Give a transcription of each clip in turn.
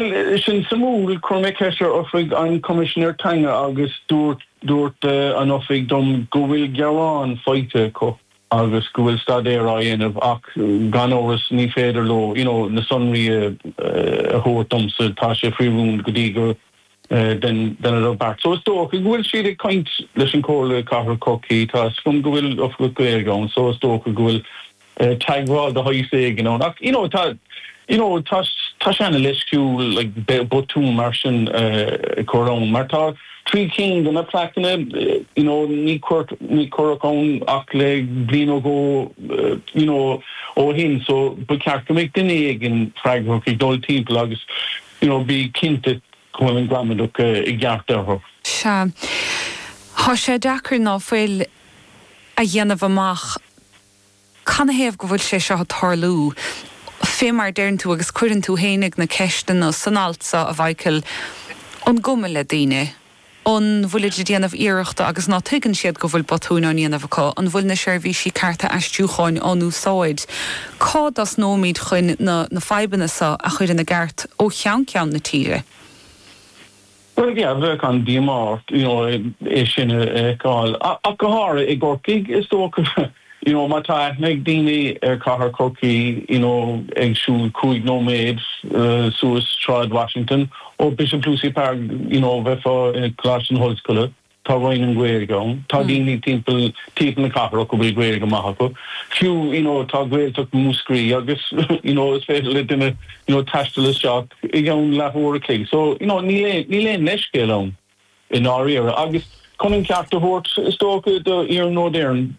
Sin suimiúil. Chuir mé ceist ar Oifig an Choimisinéir Teanga agus dúirt an Oifig dom go bhfuil gearán faighte acu agus go bhfuil staidéar á dhéanamh ach gan amhras ní féidir leo na sonraí a thabhairt domsa. Tá sé faoi rún go dtí go ndéanfadar beart. So is dócha go bhfuil siad ag caint leis an Chomhairle Cathrach Chorcaí. Tá 'fhios agam go bhfuil Oifigeach Gaeilge ann so is dócha go bhfuil. teagmháil de shaghas éigin ann. Ach you know tá you know tá tá sé ana leisciúil like botún mar sin a chur ann mar tá trí cinn de na plaiceanna you know ní cuir ní cuireadh ann ach le bliain nó dhó you know ó shin so ba cheart go mbeadh duine éigin freagrach ag dul timpeall agus you know bí cinnte go bhfuil an gramadach i gceart orthu. Sea. Tá sé deacair ná fuil a dhéanamh amach. Canathaobh go bhfuil sé seo ag tarlú, fé mar a deireann tú, agus cuireann tú féinig na ceisteanna san alt so, a Mhichael, an cuma le daoine? An bhfuilid ag déanamh iarrachta agus ná tuigeann siad go bhfuil botúin á ndéanamh acu? An bhfuil na seirbhísí cearta aistriúcháin á n-úsáid? Cá dtosnóimid chuin na na fadhbanna so a chur ina gceart ó cheann ceann na tíre? Bhuel, ní fheadar, tá an-díomá ort, you know, é sin a fheiceáil, ach go háirithe i gCorcaigh, is dócha, you know, má tá aithne ag daoine ar chathair Chorcaí, you know, ag siúl cúig nóiméad suas Sráid Washington ó Bishop Lucey Park, you know, bheifeá i gColáiste na hOllscoile. Tá Roinn na Gaeilge ann. Tá daoine timpeall timpeall na cathrach go bhfuil Gaeilge maith acu. Fiú, you know, tá Gaeltacht Mhúscraí agus, you know, is féidir le duine, you know, taisteal isteach i gceann leathuair a chloig. So, you know, níl aon níl aon leithscéal ann i ndáiríre. Agus chun an ceart a thabhairt, is dócha, do Iarnród Éireann,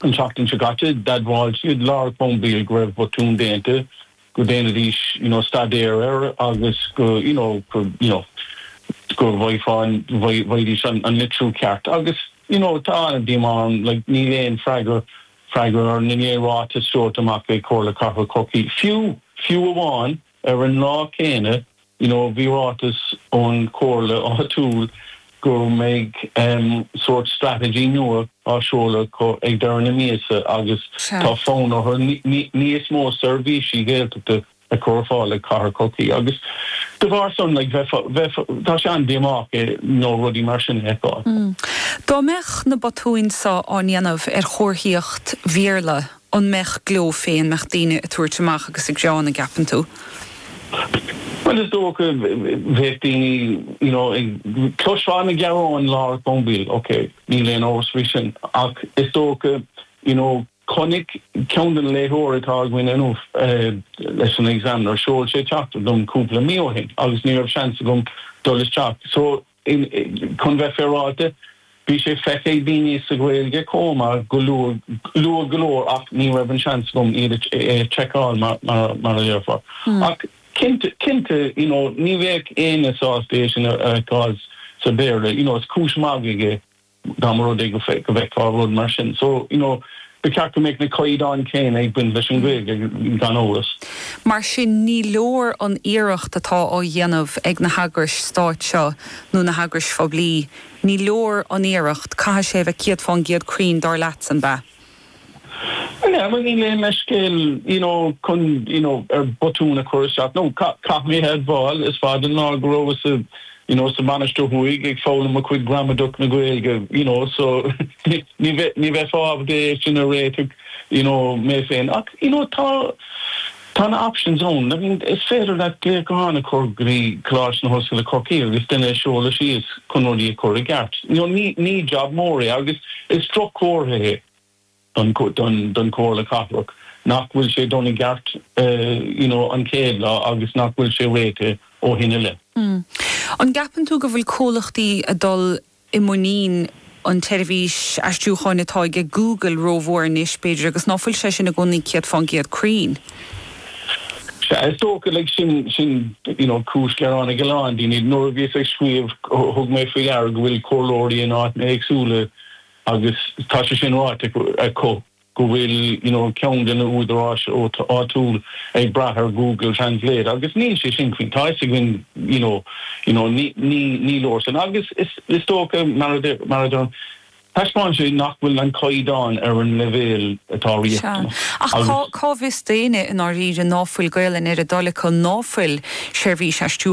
an tseachtain seo caite, d'admháil siad, lár an chomhaill, go raibh botún déanta. go ndéanfaidís you know staidéar air agus go you know go you know go bhfaigh go bhfaighidís an an litriú ceart agus you know tá an-díomá orm like níl aon freagra freagra ná aon ráiteas seolta amach ag Comhairle Cathrach Chorcaí fiú fiú amháin ar an lá céanna you know Bhí ráiteas ón chomhairle áitiúil go mbeidh sórt straitéis nua á seoladh ag deireadh na míosa agus Sea. tá fonn orthu níos mó seirbhísí Gaeltachta a chur ar fáil ag cathair Chorcaí agus de bharr san like bheifeá bheifeá tá sé an-díomách you know rudaí mar sin a fheiceáil. Dá mbeadh na botúin seo á ndéanamh ar chomharthaíocht Bhéarla an mbeadh gleo fé an mbeadh daoine ag tabhairt amach agus ag rá an gceapann tú? Bhuel is dócha bheadh daoine you know chloisfeá na gearáin ar an mBéarla ok níl aon amhras faoi sin ach is dócha you know chonaic ceann de na léitheoirí atá againn inniu leis an Examiner sheol sé teachtaireacht dom cúpla mí ó shin agus ní raibh seans agam dul isteach so Chun bheith féaráilte, bhí sé feicthe ag daoine sa Ghaeilge chomh maith go luath go leor ach ní raibh an seans agam iad a sheiceáil mar a déarfá. Ach cinnte, you know, ní bheadh éinne sásta é sin a fheiceáil sa Bhéarla, you know, is cúis mhagaidh é. Dá mba rud é go bhfeicfeá rud mar sin so, you know, ba cheart go mbeadh na caighdeáin céanna ag baint leis an Ghaeilge, gan amhras. Mar sin, ní leor an iarracht atá á dhéanamh ag na heagrais stáit seo, nó na heagrais phoiblí. Ní leor an iarracht. Caithfidh sé a bheith céad fán gcéad cruinn, dar leatsa, ab ea? Yeah, well níl aon leithscéal you know chun you know botún a chur isteach nó caithfidh mé a admháil is fada an lá go rabhas sa you know sa Mhainistir Thuaidh ag foghlaim mo chuid gramadach na Gaeilge you know so ní bheith ní bheifeá ábalta é sin a réiteach you know mé féin ach you know tá Tá na options ann. I mean is féidir leat glaoch gutháin a chur go dtí Coláiste na hOllscoile Corcaigh agus duine a sheoladh síos chun rudaí a chur i gceart. Ní job mór é agus is droch-chomhartha é don Chomhairle Cathrach nach bhfuil sé déanta i gceart you know an chéad lá agus nach bhfuil sé réitithe ó shin i leith. An gceapann tú go bhfuil comhlachtaí ag dul i muinín an tseirbhís aistriúcháin atá aige Google rómhór anois, b'fhéidir, agus ná fuil sé sin i gcónaí céad fán gcéad cruinn. Sea, is dócha, like, sin, sin, you know, cúis gearáin ag a lán daoine. Nuair a bhíos ag scríobh, thug mé faoi deara go bhfuil comhairleoirí in áiteanna éagsúla agus tá sé sin ráite acu. go bhfuil you know ceann de na húdaráis áitiúil ag brath ar Google Translate agus níl sé sin faoi mar atá fhios againn you know you know ní ní ní leor sin agus is is dócha mar a deir mar a deir taispeánann sé nach bhfuil an caighdeán ar an leibhéal atá riachtanach Ach cá agus cá bhfios d'éinne i ndáiríre ná fuil Gaolainn ar a dtoil acu ná fuil seirbhís aistriú